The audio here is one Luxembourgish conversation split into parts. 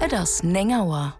Et ass néng Auer.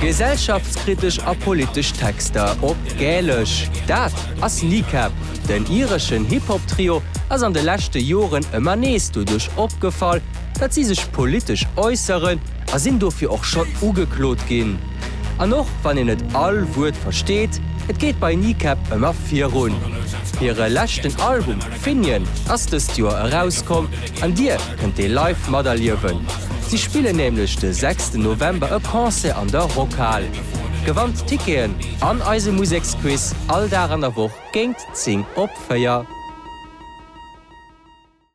Gesellschaftskritesch a politesch Texter op Gälesch, dat ass Kneecap. Den ireschen Hip-Hop-Trio ass an de leschte Joren ëmmer nees doduerch opgefall, datt si sech politesch äusseren a sinn dofir och schonn ugeklot ginn. An och wann een net all Wuert versteet, et geet bei Kneecap ëmmer virun. Hire leschten Album Finian ass dëst Joer erauskomm an Dir kënnt dee live materliewen. Si spillen nämlech de sechsten November e Concert an der Rockhal. Gewannt d'Ticketen an eise Museksquiz all Dag an der Woch géingt 10 op 4.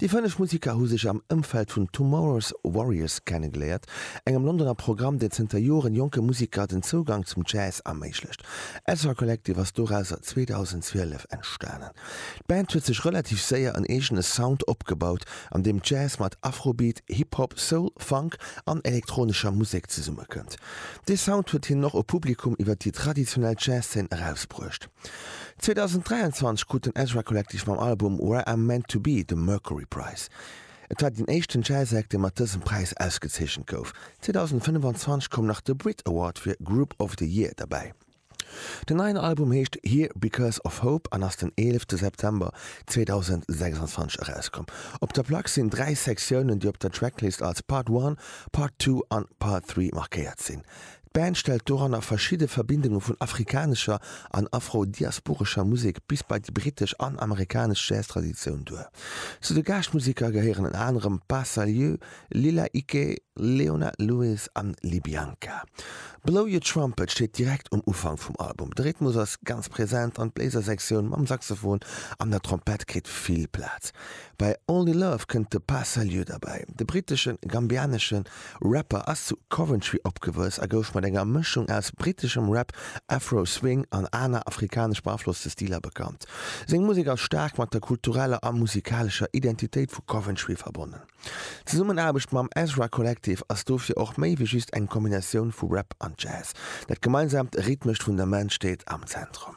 Déi fënneg Musiker hu sech am Ëmfeld vun Tomorrow's Warriors kennegeléiert, engem Londoner Programm, deen zënter Joren jonke Musiker den Zougang zum Jazz erméiglecht. Ezra Collective ass dorauser 2012 entstanen. D'Band huet sech relativ séier en eegene Sound opgebaut, an deem Jazz mat Afrobeat, Hip-Hop, Soul, Funk an elektronescher Musek zesummekënnt. Dee Sound huet hinnen och e Publikum iwwer déi traditionell Jazz-Zeen erausbruecht. 2023 krut den Ezra Collective mam Album Where I'm Meant To Be de Mercury Prize. Et war deen éischten Jazz-Act, dee mat dësem Präis ausgezeechent gouf. 2025 koum nach de Brit Award fir Group of the Year derbäi. Den neien Album heescht Here Because Of Hope an ass den 11 September 2026 erauskomm. Op der Plack sinn dräi Sektiounen, déi op der Tracklist als Part One, Part Two an Part Three markéiert sinn. D'Band stellt doranner verschidde Verbindunge vun afrikanescher an afro-diasporescher Musek bis bei déi brittesch an amerikanesch Jazz-Traditioun duer. Zu de Gaaschtmuseker gehéieren ënner anerem Pa Salieu, Lila Iké, Leona Lewis an Libianca. Blow Your Trumpet steet direkt um Ufank vum Album. De Rhythmus ass ganz present an d'Bléisersektioun mam Saxophon an der Trompett kritt vill Plaz. Bei Only Love kënnt de Pas Salieu derbäi. De britteschen-gambianesche Rapper ass zu Coventry opgewuess a gouf mat enger Mëschung aus britteschem Rap, Afro, Swing an aner afrikanesch beaflosste Stiler bekannt. Seng Musek ass staark mat der kultureller a musikalescher Identitéit vu Coventry verbonnen. D'Zesummenaarbecht mam Ezra Collective ass dofir och méi wéi just eng Kombinatioun vu Rap an Jazz. Dat gemeinsaamt rhythmescht Fundament steet am Zentrum.